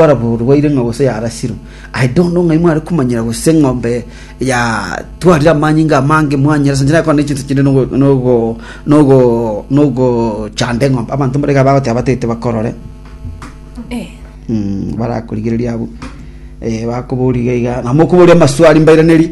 orwaire ng'a gose yarasirwe. I don't know ng'ai mware komanyera gose eng'ombe yatwarire amanyinga amange mwanyeresa inche nakona echinsa chinde nogo nogo nogo nogochanda eng'ombe abanto mbare iga bagoteba batete bakorore Eh, Mm, barakorigereria abwo Eh, bakobori iga iga nabo mokoboria amaswali mbairanerie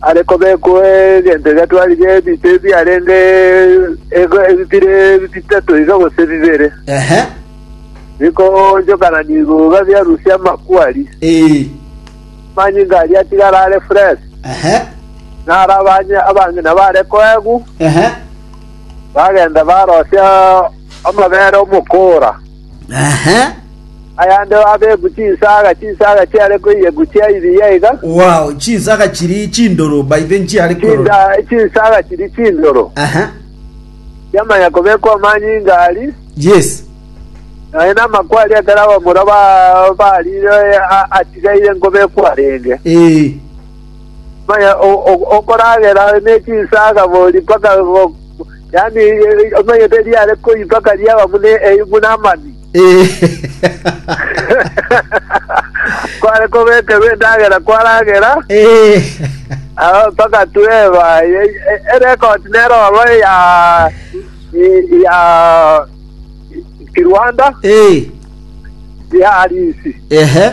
are kobekwa egento egetwarire ebinto ebiarenge ego- ebire bitato iga gose bibere, Ehe. bikoonchokanania igooga biarusia amakwari. Ee. Amanyinga aria atigara are fresh, Ehe. naro abanye- abang'ina bare koegwu, Ehe. bagenda barosia amabere omokoora. Ehe. Ayande abeku chinsaga, chinsaga chiare koiyeku chia ibiya iga, Wow, chinsaga chiri chindoro by the nchiare korora. chinsa- chinsaga chiri chindoro, Ehe. chiamanya kobekwa amanyinga ari, Yes. naye namakwa aria ekero abamura ba- barire a- atigaire nkobekwa arenge. Eh. Maya okoragera ne chinsaga bori mpaka yaani omanyete riare koi mpaka riaba buna buna amani. Kware kobekerwa endagera kwaragera ah, mpaka tweba e- e- erekoti nero oro ya ya Kirwanda ya Arisi. Ehe.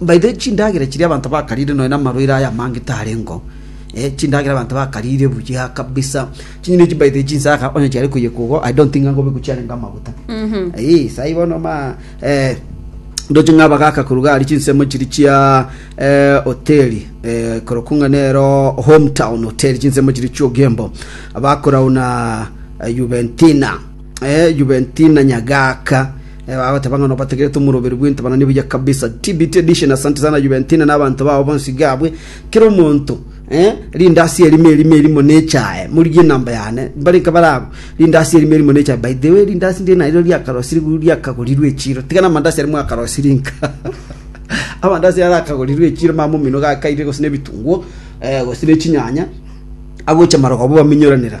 By the way, chindagera chiria abanto bakarire nonya namarwaire aya amange tarengo, eh, chindagera abanto bakarire buya kabisa. Chinyeni echi by the way chinsaka onye chiare koyeka igo, I don't think angobe kuchiarenga amaguta. Eh, sai bono ma eh ndoche ng'aba gaka koruga ari chinsemo chiri chia eh, hoteli eh, korokung'a nero hometown hotel chinsemo chiri chiogembo bakorauna eh, Juventina Juventina Nyagaka bagoteba ng'a nobategerete omoroberi bw'entabana nebuya kabisa. TBT edition asante sana Juventina na abanto bao bonsi gabwe. Kera omonto eh, rinde ase erimo erimo erimo nechae morigie enamba yane mbare nka bare abo rinde ase erimo erimo nechae by the way rinde ase ndire nariro riakarosirwe riakagorirwe echiro tiga namandasi aria mwakarosiri nka amandasi aria arakagorirwe echiro mama omino gakaire gose na ebitunguo eh, gose na echinyanya agocha marogoba baminyoranera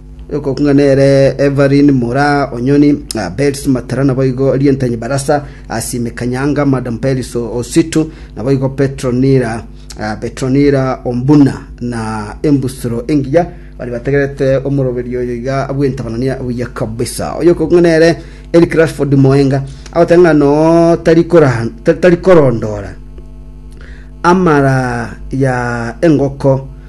Okong'a nere Evelyn mora o Nyoni, Belsi Matara naboigo Rientanyi Barasa, Asimi Kanyanga, Madam Belsi Ositu, naboigo Petronila Petronila Ombuna na Embusuro Engiya baria bategerete omoroberio oyo iga bw'entabanania buya kabisa. Oyo okong'a nere Eric Rashford Moenga agoteba ng'a no tari kora- ta- tari korondora amara ya engoko